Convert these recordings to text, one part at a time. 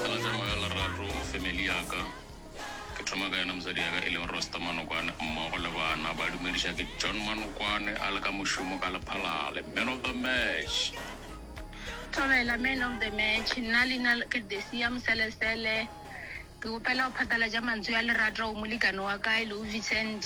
Ka matseno a leraro family ya ka, ke thoma ka yena mosadi ya ka e leng Rosta Manokwane mmogo le bana, ba dumediša ke John Manokwane a le ka mošomo ka lephalale, man of the match. Thobela, man of the match, nna leina la ke Desia Moselesele, ke kgopela go phatalatša mantswe a lerato go molekane wa ka e lego Vincent.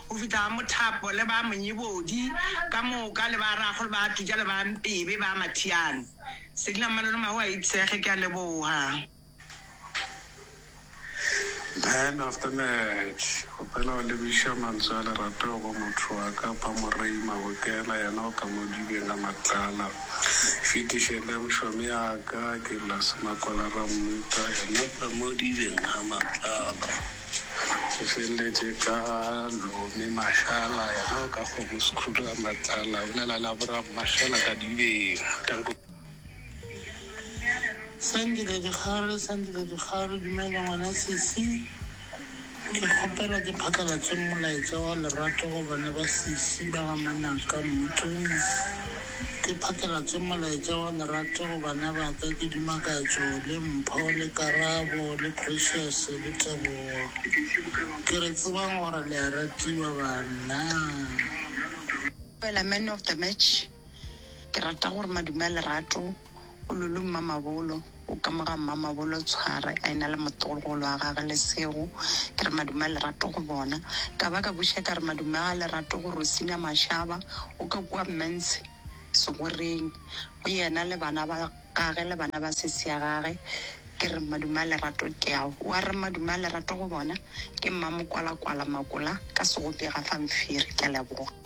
go fihla ga mothapo le ba monyebodi ka moka le ba rago le ba tujha le ba mpebe ba mathiane Selina mmalo le mahu a itshege ke a leboga. Man of the match kgopela go lebiša mantswe a lerato go motho wa ka pa Morei Mabokela yena o ka mo dibeng a matlala fetiše le mšomi ya ka ke Blase Makola Rammuta yena o ka mo dibeng a matlala. Go feleletše ka Lome Mashala, yena o ka kgomo Sekhudu a Matlala, o lela la Bram Mashala ka Dibeng. Tanko. Sandile Dikgare, Sandile Dikgare, Dumela ngwana sesi, ke kgopela ke phatlalatse molaetsa wa lerato go bana ba sesi ba ga Manaka, Mmutlong, Ke phatlalatše molaetša wa lerato go bana ba ka, ke duma katšo, le mpho, le karabo, le precious, le tebogo. Ke re tsebang gore le a ratiwa, banna. Fela man of the match, ke rata gore madume a lerato. O lulu mmamabolo, o ka mo ga mmamabolo Tshware a ena le motolgolo wa gage Lesego. Ke re, Madume a Lerato go bona. Ka ba ka buša ka re, Madume ga Lerato go Rosina Mashaba, o ka kua Mmenshe Segoreng go yena le bana ba gage le bana ba sesi ya gage. Ke re, Madume a Lerato ke ao. Wa re, Madume a Lerato go bona, ke Mmamokwalakwala Makola ka Segopega fa Mphiri. Ke a leboga.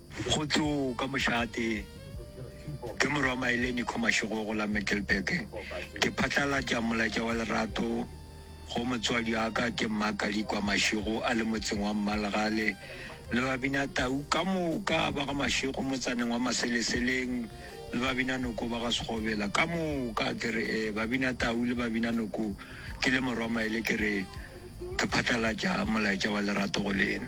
Go tlo ka mošagatee, ke morwa Maile Nico Mashigogo la Middelburg. Ke phatlalatša molaetša wa lerato go motswadi wa ka ke Mma Kalikwa Mashigo a le motseng wa Mmalgale le babina tau ka moka ba ga Mashigo motsaneng wa Maseleseleng le babina noko ba ga Segobela ka moka. Ke re eh, babina tau le babina noko ke le morwa Maile ke re ke phatlalatša molaetša wa lerato go lena.